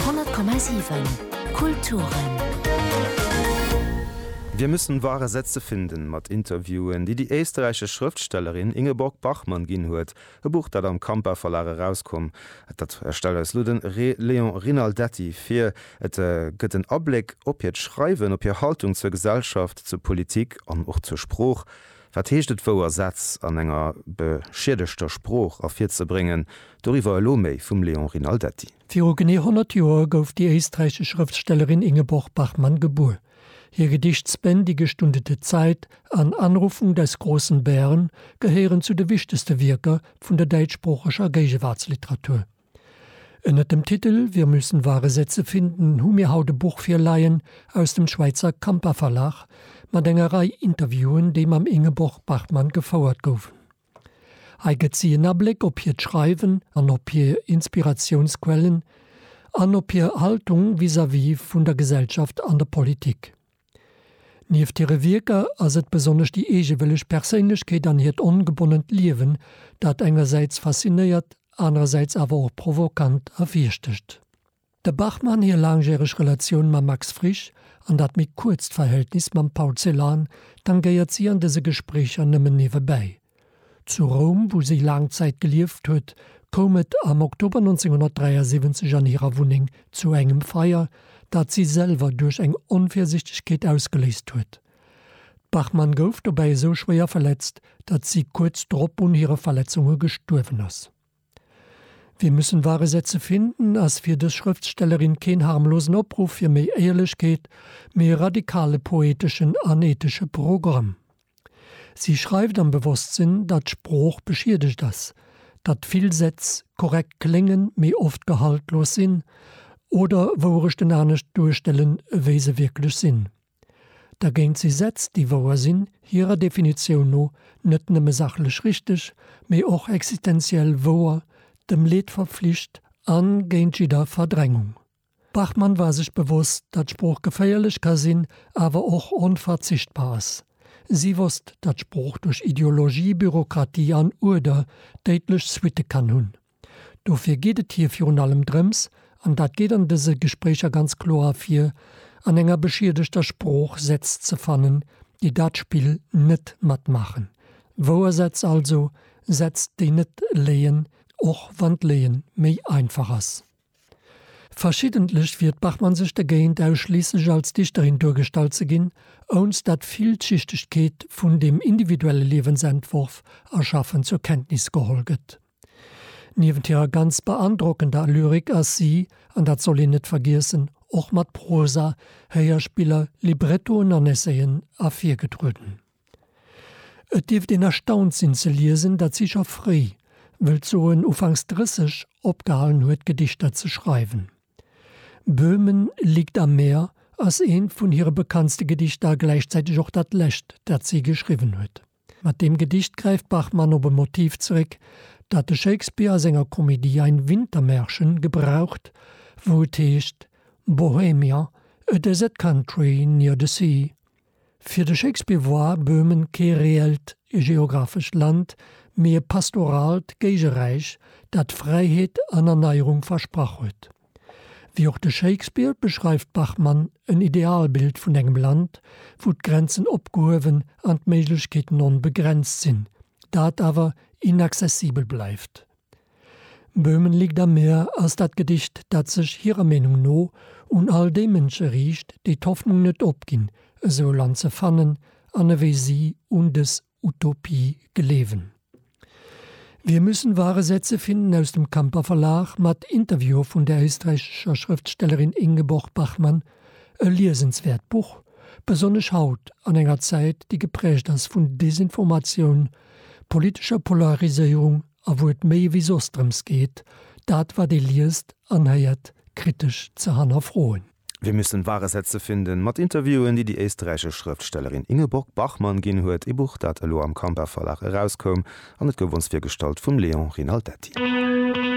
100,7 Kulturen. Wir müssen wahre Sätze finden mat Interviewen, déi déi éisterräichesch Schrëftstellerin Ingeborg Bachmann ginn huet, e Buch, dat am Campa Verlag erauskomm. Dat stellt eis elo de Re Léon Rinaldetti vir. Et gëtt en Abléck op hiert Schreiwen, op hir Haltung zur Gesellschaft, zur Politik an och zur Sprooch. Wat heescht et wouer Sätz an enger beschiedegter Sprooch ervirzebréngen? Doriwwer elo méi vum Léon Rinaldetti. Viru genee 100 Joer gouf déi éisträichesch Schrëftstellerin Ingeborg Bachmann gebuer. Hir Gedichts-Bänn Die gestundete Zeit an Anrufung des großen Bären gehéieren zu de wichtegste Wierker vun der däitschsproocheger Géigewaartsliteratur. Ënnert dem Titel Wir müssen wahre Sätze finden hu mir haut e Buch virleien aus dem Schwäizer Campa Verlag mat enger Rei Interviewen, déi mam Ingeborg Bachmann gefouert goufen. Hei gëtt si en Abléck op hiert Schreiwen an op hir Inspiratiounsquellen an op hir Haltung vis-à-vis vun der Gesellschaft an der Politik. Nieft hire Wierker ass et besonnesch déi eegewëlleg Perséinlechkeet an hiert ongebonnent Liewen, dat engersäits faszinéiert, anerersäits awer och provokant ervirstëcht. Der Bachmann hir laangjäreg Relatioun mam Max Frisch an dat méi kuerzt Verhältnis mam Paul Celan tangéiert si an dëse Gespréicher nëmmen niewebäi. Zu Roum, wou si laang Zäit gelieft huet, koum et am Oktober 1973 an hirer Wunneng zu engem Feier, dat si selwer duerch eng Onvirsichtegkeet ausgeléist huet. D'Bachmann gouf dobäi esou schwéier verletzt, datt si kuerz drop un hire Verletzunge gestuerwen ass. Wir müssen wahre Sätze finden ass fir dës Schrëftstellerin keen harmlosen Opruff fir méi Éierlechkeet, mee e radikale poeteschen an ethesche Programm. Si schreift am Bewosstsinn, datt d'Sprooch beschiedegt ass, datt vill Sätz korrekt kléngen, mee oft gehaltlos sinn oder Wourechten anescht duerstellen, wéi se wierklech sinn. Dergéint si Sätz, déi wouer sinn, hirer Definitioun no net nëmme sachlech richteg, mee och existenziell wouer, dem Leed verpflicht a géint jidder Verdrängung. Bachmann war sech bewosst, datt Sprooch geféierlech ka sinn, awer och onverzichtbar ass. Si wosst, datt Sprooch duerch Ideologie, Bürokratie an Uerder déidlech Suitte kann hunn. Dofir geet et hir virun allem drëms, an dat geet an dëse Gespréicher ganz kloer ervir, an enger beschiedegter Sprooch Sätz ze fannen, déi dat Spill net matmaachen. Wouer Sätz also, Sätz déi net léien, och wann d'Léie méi einfach ass. Verschiddentlech wiert d'Bachmann sech dergéint, ausschliisslech als Dichterin duergestallt ze ginn, ounst dat d'Villschichtegkeet vun dem individuelle Liewensentworf erschaffen zur Kenntnis geholl gëtt. Niewent hirer ganz beandrockender Lyrik ass si, an dat soll een net vergiessen, och mat Prosa, Héierspiller, Librettoen an Essayen ervirgetrueden. Et dierft een erstaunt sinn ze liesen, datt si scho fréi, wëllt soen ufanks 30, opgehalen huet Gedichter ze schreiwen. Böhmen liegt am Meer ass eent vun hire bekanntste Gedichter a gläichzäiteg och dat lescht, dat si geschriwwen huet. Mat deem Gedicht gräift Bachmann op e Motiv zeréck, dat de Shakespeare a senger Komedie Ein Wintermärchen gebraucht, wou et heescht, Bohemia, a desert country near the sea. Fir de Shakespeare woar Böhmen kee reellt geographescht Land, mee e pastoraalt Géigeräich, dat Fräiheet an Erneierung versprach huet. Wéi och de Shakespeare beschreift Bachmann en Idealbild vun engem Land, wou d'Grenzen opgehuewen an d'Méiglechkeeten onbegrenzt sinn, dat awer inaccessibel bleift. Böhmen liegt am Meer ass dat Gedicht, dat sech hirer Meenung no un all déi Mënsche riicht, déi d'Hoffnung net opginn, esou e Land ze fannen an ewéi si un dës Utopie gleewen. Wir müssen wahre Sätze finden aus dem Kamper Verlag mat Interview vun der éisträichescher Schrëftstellerin Ingeborg Bachmann, e liesenswäert Buch, besonnesch haut an enger Zäit, déi geprägt ass vun Desinformatioun, politescher Polariséierung a wou et méi ewéi soss drëms geet, dat wat ee liest an héiert kritesch ze hannerfroen. Wir müssen wahre Sätze finden mat Interviewen, déi déi éisterräichesch Schrëftstellerin Ingeborg Bachmann ginn huet, ee Buch, dat elo am Kamper Verlag erauskoum, an et gouf ons virgestallt vum Léon Rinaldetti.